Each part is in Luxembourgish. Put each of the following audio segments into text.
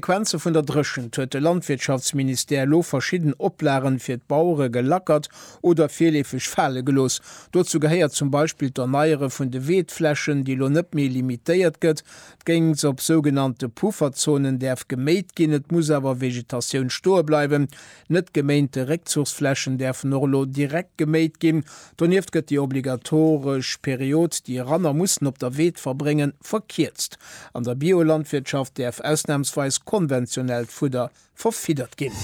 Konsequenze vun der Dréchent huet de Landwirtschaftsministère elo verschidden Oplagen fir d'Bauere gelackert oder virleefeg fale gelooss. Dozou gehéiert zum Beispill d'Erneiere vun de Weedflächen, déi elo net méi limitéiert gëtt. D'Géngs op sougenannte Pufferzonen däerf geméit ginn, et muss awer Vegetatioun stoe bleiwen. Net geméinte Réckzuchsflächen däerfen och elo direkt geméit ginn. Donieft gëtt déi obligatoresch Period, déi Ranner mussen op der Weed verbréngen, verkierzt. An der Biolandwirtschaft däerf ausnamsweis konventionellt Fudder verfiddert ginn.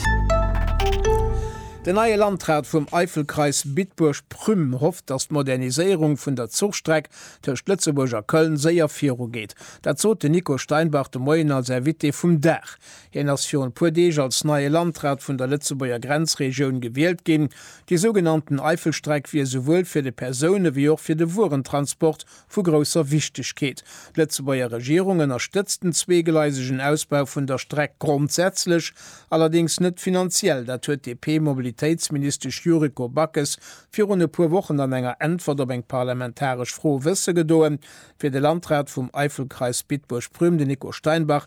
Den neie Landrat vum Eifelkreis Bitburg-Prüm hofft, datt d'Moderniséierung vun der Zuchstreck tëscht Lëtzebuerg a Köln séier virugeet. Dat sot den Nico Steinbach de Moien als Invité vum Dag. Hien ass virun e puer Deeg als neie Landrat vun der Lëtzebuerger Grenzregioun gewielt ginn. Déi sougenannten Eifelstreck wier souwuel fir de Persoune wéi och fir de Wuerentransport vu grousser Wichtegkeet. D'Lëtzebuerger Regierung ënnerstëtzt den zweegleisegen Ausbau vun der Streck grondsätzlech, allerdéngs net finanziell. Dat huet d'DP-Mobilitéitsministesch Yuriko Backes virun e puer Wochen an enger Äntwert op eng parlamentaresch Fro wësse gedoen. Fir de Landrat vum Eifelkreis Bitburg-Prüm, den Nico Steinbach,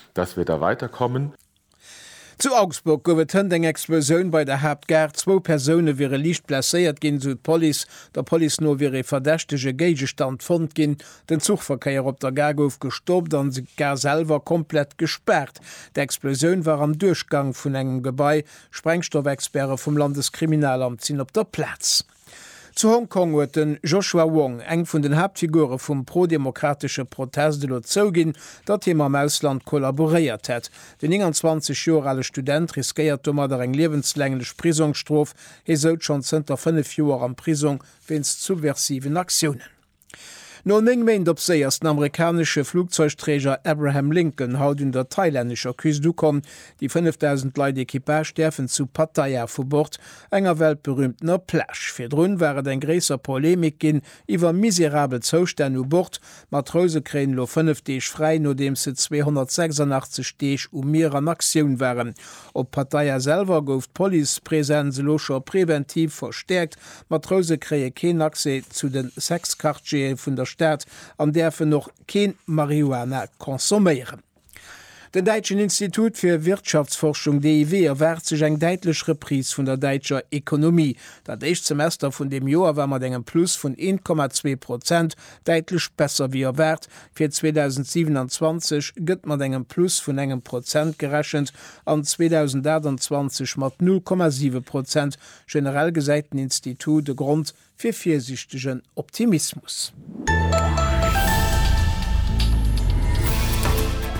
Dass wir da weiterkommen. Zu Augsburg gouf et hënt eng Explosioun bei der Haaptgare. Zwou Persoune wiere liicht blesséiert ginn, esou d'Police. Der Police no wier ee verdächtege Géigestand fonnt ginn. Den Zuchverkéier op der Gare gouf gestoppt an d'Gare selwer komplett gespaart. D'Explosioun war am Duerchgang vun engem Gebai. Sprengstoffexperte vum Landeskriminalamt sinn op der Plaz. Zu Hong Kong huet de Joshua Wong, eng vun den Haaptfigure vum prodemokratesche Protest, elo zouginn, datt hie mam Ausland kollaboréiert hätt. Den 29 Joer ale Student riskéiert domadder eng liewenslänglech Prisongsstrof. Hie souz schonn zënter fënnef Joer am Prisong wéinst subversiven Aktiounen. No 9 Méint op Séi ass den amerikanesche Flugzeugträger Abraham Lincoln haut un der thailännescher Küst ukomm. Déi 5.000 Leit Equipage däerfen zu Pattaya vu Bord, enger weltberüümtener Plage. Virdrun war et eng gréisser Polemik ginn iwwer miserabel Zoustänn u Bord. Matrouse kréien elo 5 Deeg fräi, nodeems se 286 Deeg um Mier an Aktioun waren. Op Pattaya selwer gouf d'Policepresenz elo scho preventiv verstäerkt D'Matrouse kréie keen Accès zu de Sex-Quartiere vun der Stad an däerfen och keen Marihuana consomméieren. Den däitschen Institut fir Wirtschaftsforschung, DIW, erwaart sech eng däitlech Reprise vun der däitscher Ekonomie. Dat éischt Semester vun deem Joer war mat engem Plus vun 1,2 Prozent däitlech besser wéi erwaart. Fir 2027 gëtt mat engem Plus vun engem Prozent gerechent an 2028 mat 0,7 Prozent, Generell gesäit den Institut e Grond fir virsiichtegen Optimismus.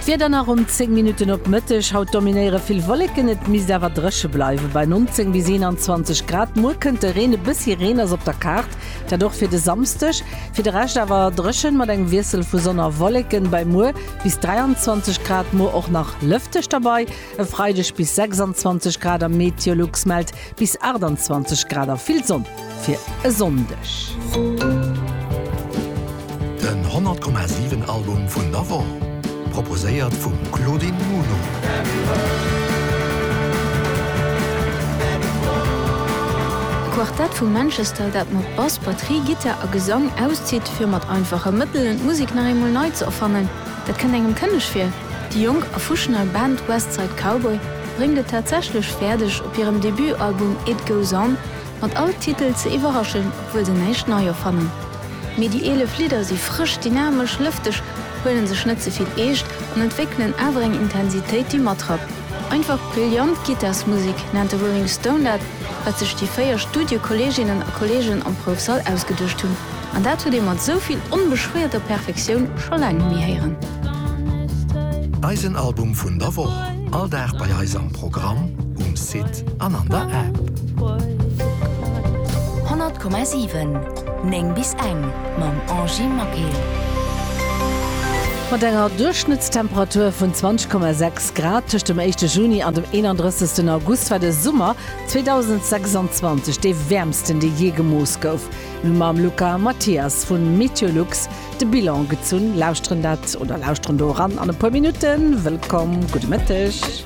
D'Wieder nach um 10 Minutten op Mëtteg, Haut dominéiere vill Wolleken, et misst awer dréche bleiwe bei 19 bis 21 Grad. Muer kënnt de Reen, e bëssi Reen ass op der Kaart, dat och fir de Samsdeg. Fir de Rescht awer dréchen, mat engem Wiessel vu Sonn a Wolleken bei muer bis 23 Grad. Muer och nach lëfteg dobei. E Freideg bis 26 Grad a Meteolux mellt bis 28 Grad a vill Sonn fir e Sonndeg. Den 100,7 Album vun der Woch, proposéiert vum Claudine Muno. E Quartett vu Manchester, dat mat Bass, Batterie, Gittar a Gesang auszitt, fir mat einfache Mëttelen d'Musek nach eemol nei ze erfannen, dat kënnt engem kënneg vir. Déi jonk a fuschnei Band West Side Cowboy bréngt et tatsächlech fäerdeg, op hirem Debutalbum It Goes On mat all Titel ze iwwerraschen, obwuel se näischt nei erfannen. Mee déi 11 Lidder si frësch, dynamesch, lëfteg, huele sech net ze vill eescht an entwéckelen awer eng Intensitéit, déi matrappt. Einfach brillant Gittarsmusek nennt de Rolling Stone dat. wat sech déi 4 Studiekolleeginnen a Kolleegen am Proufsall ausgeduecht hunn, an dat huet ee mat esou vill onbeschwéierter Perfektioun scho laang net méi héieren. Eisen Album vun der Woch, all Dag bei eis am Programm, um Site an an der App. 100,7, 9 bis eng, mam Angie Maquil. Mat enger Duerchschnëttstemperatur vun 20,6. Grad tëscht dem éischte Juni an dem 31. August war de Summer 2026 dee wäermsten, dee jee gemooss gouf. Mir hu mam Luca Mathias vu Meteolux de Bilan gezunn. Lauschteren dat oder lauschteren do eran an e puer Minutten. Wëllkomm, gudde Mëtteg.